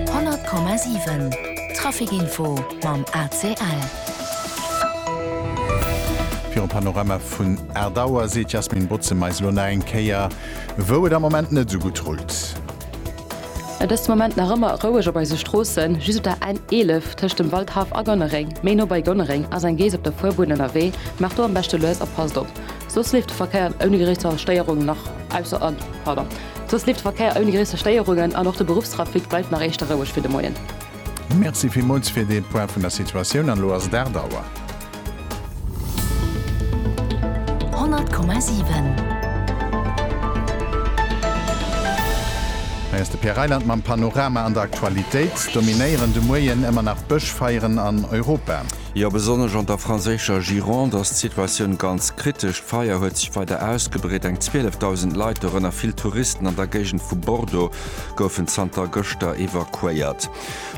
100,7 Trafic Info mam ACL. Virum Panorama vun 8 Auer seet d'Yasmine Bozema eis elo nach eng Kéier, wou et am Moment net esou gutt rullt. Et ass de Moment nach ëmmer roueg op eise Stroossen. Just op der N 11 tëscht dem Waldhaff a Gonnereng, méi no bei Gonnereng, ass eng Geess op der Fuerbunn ënnerwee. Maacht do am beschte lues a passt op. Soss leeft de Verkéier ouni gréisser Stéierungen an och de Beruffstrafic bleift nach éischter roueg fir de Moien. Merci villmools fir dee Point vun der Situatioun. An elo ass et 8 Auer. 100,7. Hei ass de Pierre Reyland mam Panorama an der Aktualitéit. Dominéieren de Moien ëmmer nach Bëschfeieren an Europa. Jo, besonnesch an der franséischer Gironde ass d'Situatioun ganz kritesch. D'Feier huet sech weider ausgebreet, eng 12.000 Leit, dorënner vill Touristen an der Géigend vu Bordeaux, goufen zanter gëschter evakuéiert.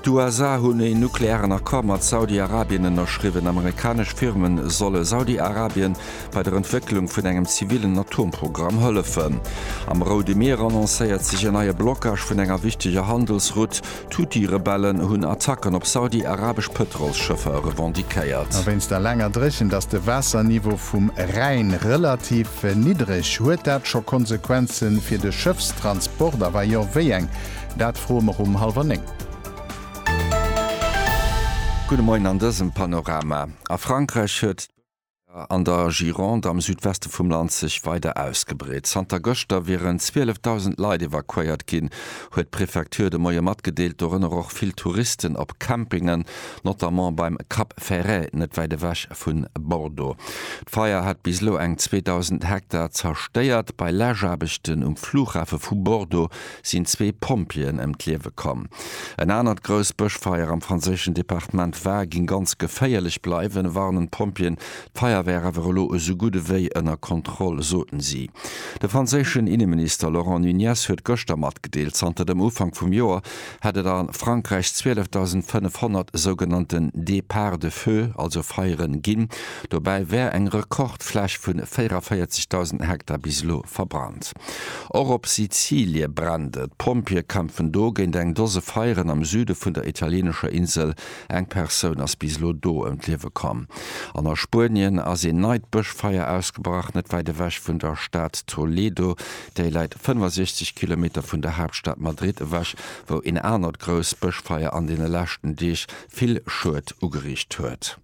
D'USA hunn e nuklearen Accord mat Saudi-Arabien ënnerschriwwen. Amerikanesch Firme solle Saudi-Arabien bei der Entwécklung vun engem zivillen Atomprogramm hëllefen. Am Roude Mier annoncéiert sech en neie Blockage vun enger wichteger Handelsroute. D'Huthi-Rebellen hunn Attacken op saudi-arabesch Pëtrolsschëffer revendiquéiert. A wéinst der laanger Dréchent ass de Waasserniveau vum Rhäin relativ niddreg. Huet dat scho Konsequenze fir de Schëffstransport a wa jo, wéi eng? Dat froe mer um hallwer néng. Gudde Moien an dësem Panorama a Frankräich huet. an der Gironde am Südweste vum Land sech weider ausgebreet. Zanter gëschter wieren 12.000 Leit evakuéiert ginn, huet d'Prefecture de Moie matgedeelt, dorënner och vill Touristen op Campingen, notamment beim Cap Ferret, net wäit ewech vu Bordeaux. D'Feier hat bis elo eng 2.000 Hektar zerstéiert. Bei Läschaarbechten um Flughafe vu Bordeaux sinn zwee Pompjeeën ëm d'Liewe komm. En anert grousst Bëschfeier am franséischen Departement Var géing ganz geféierlech bleiwen, warnen d'Pompjeeën. D'Feier wär awer elo esou gutt ewéi ënner Kontroll, soten si. De franséischen Inneminister Laurent Nunez huet gëschter matgedeelt, zanter dem Ufank vum Joer hätt et a Frankräich 12.500 sougenannten Départs de feu, also Feieren, ginn. Dobäi wär eng Rekordfläch vu 44.000 Hektar bis elo verbrannt. Och op Sizilie brennt et, D'Pompjeeë kämpfen do géint eng Dose Feieren am Süde vun der italieenescher Insel. Eng Persoun ass bis elo do ëm d'Liewe komm. An a Spuenien ass een neit Bëschfeier ausgebrach, net wäit ewech vun der Stad Toledo. Déi läit 65 Kilometer vun der Haaptstad Madrid ewech, wou een anert grousst Bëschfeier an deene leschten Deeg vill Schued ugeriicht huet.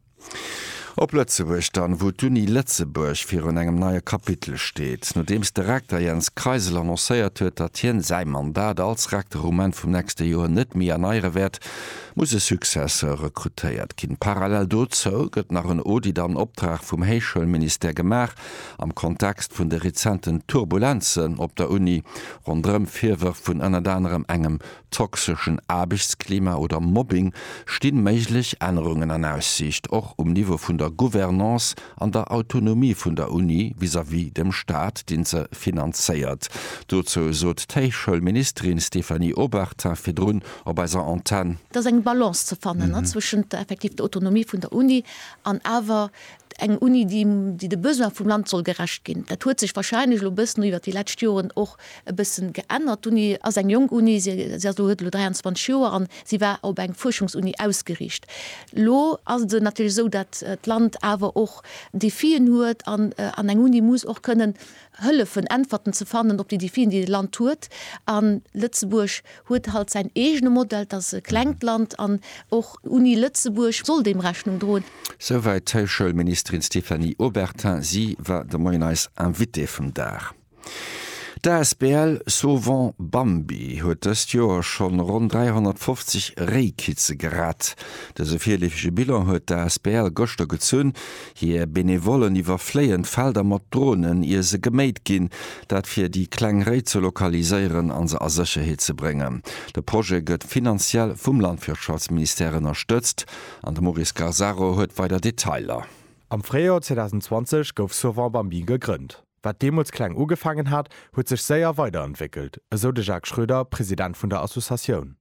Op Lëtzebuerg dann, wou d'Uni Lëtzebuerg virun engem neie Kapitel steet, nodeems de Rekter Jens Kreisel annoncéiert huet, datt hien säi Mandat als Rekter um Enn vum nächste Joer net méi erneiere wäert, muss e Successeur rekrutéiert ginn. Parallel dozou gëtt nach en Audit an Optrag vum Héichschoulministère gemaach, am Kontext vun de rezenten Turbulenzen op der Uni ronderëm Virwërf vun ënnert anerem engem toxeschen Aarbechtsklima oder Mobbing, sti méiglech Ännerungen an Aussiicht, och um Niveau vun der Gouvernance an der Autonomie vun der Uni vis-à-vis dem Staat, deen se finanzéiert. Dozou sot d'Héichschoulministerin Stéphanie Obertin virdrun op eiser Antenn. Et ass eng Balance ze fannen zwëschent effektiv der Autonomie vun der Uni an awer eng Uni, déi de Besoin vum Land soll gerecht ginn. Dat huet sech wahrscheinlech elo e bëssen iwwert déi lescht Joren och e bëssen geännert. D'Uni ass eng jonk Uni, si ass elo, huet elo 23 Joer an si war op eng Fuerschungsuni ausgeriicht. Elo ass et natierlech esou, datt d'Land awer och Defien huet an eng Uni muss och kënnen hëllefen Äntwerten ze fannen op déi Defien, déi de Land huet. A Lëtzebuerg huet halt säin eegene Modell, et ass e klengt Land an och d'Uni Lëtzebuerg soll deem Rechnung droen. Souwäit d'Heichschoulministerin Stéphanie Obertin. Si war de Moien eis Invitée vum Dag. D'Asbl Sauvons Bambi huet dëst Joer schonn ronn 350 Réikitze gerett. Dëse virleefege Bilan huet d'Asbl gëschter gezunn, Hir Benevollen iwwerfléien d'Felder mat Dronen, ier se geméit ginn, dat fir déi kleng Réi ze lokaliséieren a se a Sécherheet ze bréngen. De Projet gëtt finanziell vum Landwirtschaftsministère ënnerstëtzt an de Maurice Garzaro huet weider Detailer. Am Fréijoer 2020 gouf Sauvons Bambi gegrënnt. Wat deemools kleng ugefaangen hat, huet sech séier weiderentwéckelt, esou de Jacques Schröder, President vun der Associatioun.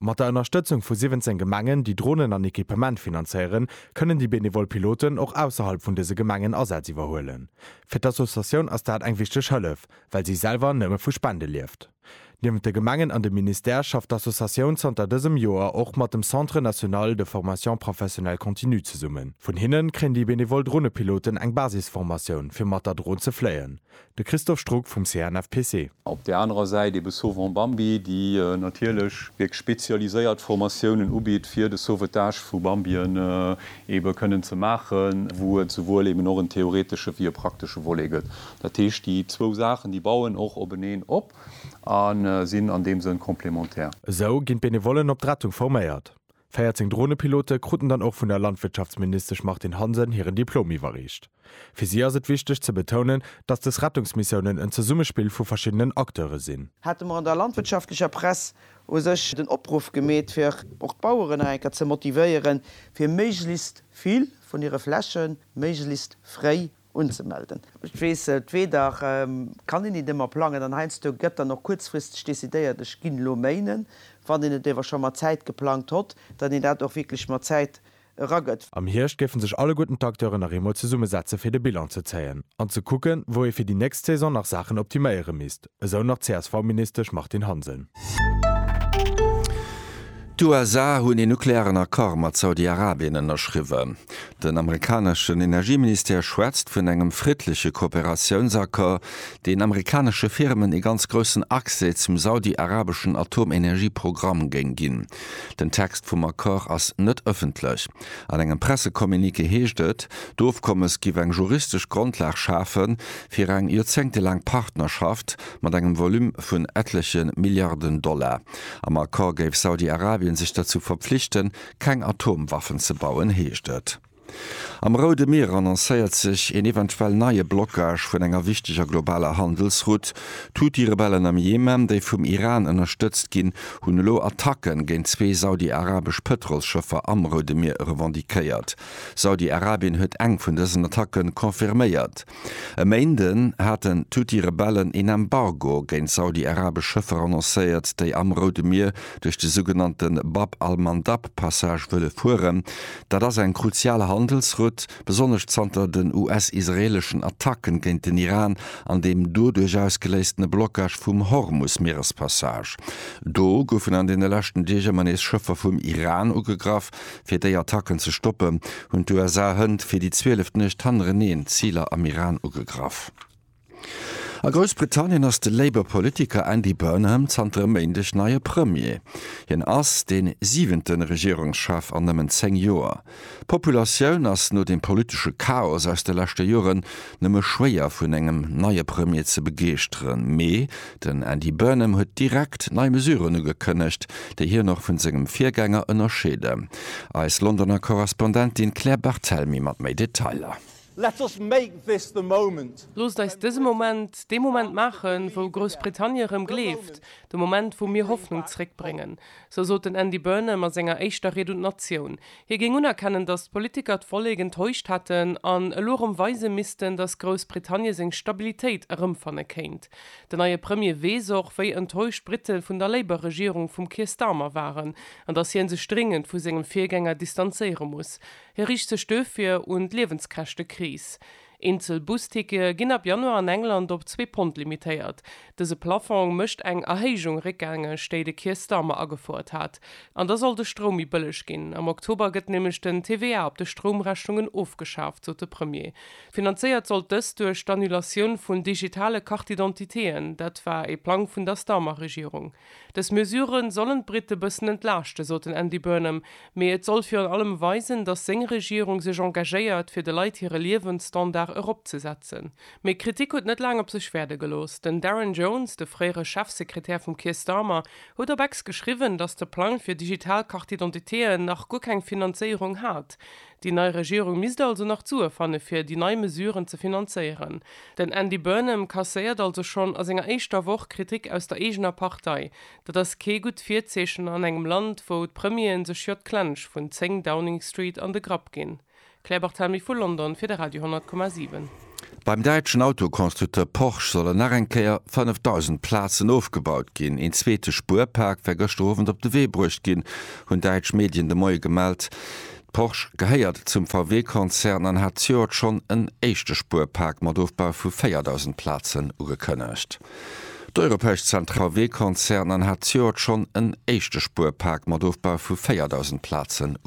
Mat der Ënnerstëtzung vu 17 Gemengen, déi Dronen an Equipement finanzéieren, kënnen déi benevol Piloten och ausserhalb vun dëse Gemengen Asätz iwwerhuelen. Fir d'Associatioun ass dat eng wichteg Hëllef, well si selwer nëmme vu Spende lieft. Niewent de Gemengen an dem Ministère schafft d'Associatioun zanter dësem Joer och mat dem Centre national de formation professionnelle continue zesummen. Vun hinnen kréien déi benevol Dronepiloten eng Basisformatioun, fir mat der Dron ze fléien. De Christophe Strug vum CNFPC. Op där anerer Säit ebe Sauvons Bambie, déi natierlech wierklech spezialiséiert Formatiounen ubitt, fir de Sauvetage vu Bambien ebe kënnen ze maachen, wou et souwuel eben och en theoretesche wéi e praktesche Volet gëtt. Dat heescht, déi zwou Saachen, déi bauen och openeen op a sinn an deem Sënn complémentaire. Esou ginn d'Benevollen op d'Rettung forméiert. 14 Dronepilote kruten dann och vun der Landwirtschaftsministesch Martine Hansen hiren Diplom iwwerreecht. Fir si ass et wichteg ze betounen, datt des Rettungsmissiounen en Zesummespill vu verschiddenen Acteure sinn. Hate mer an der landwirtschaftlecher Press u sech den Opruff gemeet, fir och d'Baueren nach eng Kéier ze motivéieren, fir méiglechst vill vun hire Fläche méiglechst fréi unzemelden. Ech weess et, weder kann een een ëmmer plangen an heiansdo gëtt dann och kuerzfristeg decidéiert, ech ginn elo méinen, wann een et ewer scho mat Zäit geplangt hott, datt een dat och wierklech mat Zäit eragëtt. Am Hierscht géifen sech alleguerten d'Acteuren nach eemol zesummesetze fir de Bilan ze zéien an ze kucken, wou ee fir déi nächst Saison nach Saachen optiméiere misst. Esou nach d'CSV-Ministesch Martine Hansen. D'USA hunn een nuklearen Accord mat Saudi-Arabien ënnerschriwwen. Den amerikaneschen Energieministère schwätzt vun engem friddleche Kooperatiounsaccord, deen amerikanesche Firmen ee ganz groussen Accès zum saudi-arabeschen Atomenergieprogramm géing ginn. Den Text vum Accord ass net ëffentlech. An engem Pressecommuniqué heescht et, d'Ofkommes giff eng juristesch Grondlag schafe fir eng joerzéngtelaang Partnerschaft mat engem Volume vun ettleche Milliarden Dollar. Am Accord géif Saudi-Arabien sech derzou verpflichten, keng Atomwaffen ze bauen, heescht et. Am Roude Mier annoncéiert sech een eventuell neie Blockage vun enger wichteger globaler Handelsroute. D'Huthi-Rebellen am Jemen, déi vum Iran ënnerstëtzt ginn, hunn elo Attacke géint zwee saudi-arabesch Pëtrolsschëffer am Roude Mier revendiquéiert. Saudi-Arabien huet eng vun dësen Attacke confirméiert. E Méinden haten d'Huthi-Rebellen een Embargo géint saudi-arabesch Schëffer annoncéiert, déi am Roude Mier duerch de sougenannte Bab al-Mandab-Passage wëlle fueren. Dat ass eng kruzial Handelsroute. Besonnesch zanter den US-israeeleschen Attacken géint den Iran an deem doduerch ausgeléistene Blockage vum Hormus-Mierespassage. Do goufen an deene leschten Deeg ëmmer nees Schëffer vum Iran ugegraff. Fir déi Attacken ze stoppen, hunn d'USA hënt fir déi zwieleft Nuecht hannereneen Ziler am Iran ugegraff. A Groussbritannien ass de Labour Politiker Andy Burnham zanter e Méindeg neie Premier. Hien ass dee siwente Regierungschef an nëmmen zéng Joer. D'Populatioun ass no dem politesche Chaos aus de leschte Joren nëmme schwéier vun engem neie Premier ze begeeschteren. Mee den Andy Burnham huet direkt nei Mesuren ugekënnegt, déi hien och vun sengem Virgänger ënnerscheeden. Eis Londoner Korrespondentin Claire Barthelmy mat méi Detailer. Let's just make this the moment. Loosst eis dëse Moment dee Moment maachen, wou Groussbritannie erëm gleeft, de Moment, wou mir Hoffnung zréckbréngen. Esou sot den Andy Burnham a senger éischter Ried un d'Natioun. Hie géing unerkennen, datt d'Politiker d'Vollek enttäuscht hätten an elo erëm weise missten, datt Groussbritannie seng Stabilitéit erëmfanne kéint. Den neie Premier weess och, wéi enttäuscht d'Brite vun der Labour-Regierung vum Keir Starmer waren an datt hien sech dringend vu sengem Virgänger distanzéiere muss. Hie riicht sech duerfir un d'Liewenskäschtekris. Eenzel Bustickete ginn ab Januar an England op zwee Pond limitéiert. Dëse Plaffong mécht eng Erhéijung réckgängeg, déi de Keir Starmer agefouert hat. An da soll de Stroum méi bëlleg ginn. Am Oktober gëtt nämlech den TVA op de Stroumrechnungen ofgeschaaft, sot de Premier. Finanzéiert sollt dëst duerch d'Annulatioun vun digitale Carte-d'identitéen. Dat war ee Plang vun der Starmer-Regierung. Dës Mesure sollen d'Brite bëssen entlaaschte, sot den Andy Burnham, mee et soll virun allem weisen, datt seng Regierung sech engagéiert, fir de Leit hire Liewensstandard eropzesetzen. Mee d'Kritik huet net laang op sech wäerde gelooss. Den Darren Jones, de fréiere Chefsekretär vum Keir Starmer, huet op Ex geschriwwen, datt de Plang fir digital Carte-d'identitéen nach guer keng Finanzéierung hat. Déi nei Regierung misst also nach d'Sue fanne fir déi nei Mesuren ze finanzéieren. Den Andy Burnham kasséiert also schonn a senger éischter Woch Kritik aus der eegener Partei. Dat ass kee gutt Virzeechen an engem Land, wou d'Premieren sech jo d'Klensch vun 10 Downing Street an de Grapp ginn. Claire Barthelmy vu London fir de Radio 10,7. Beim däitschen Autoconstructeur Porsche sollen nach eng Kéier 5.000 Plazen ofgebaut ginn. Een zweete Spuerpak war gëschter Owend op de Wee bruecht ginn, hunn däitsch Medien de Moie gemellt. Porsche gehéiert zum VW-Konzern an hat zejoert schonn en éischte Spuerpak mat Ofbau vu 4.000 Plazen ugekënnegt. D'europäesch Zent VW-Konzern an hat zejoert schonn en éischte Spuerpak mat Ofbau vu 4.000 Plazen ugekënnegt.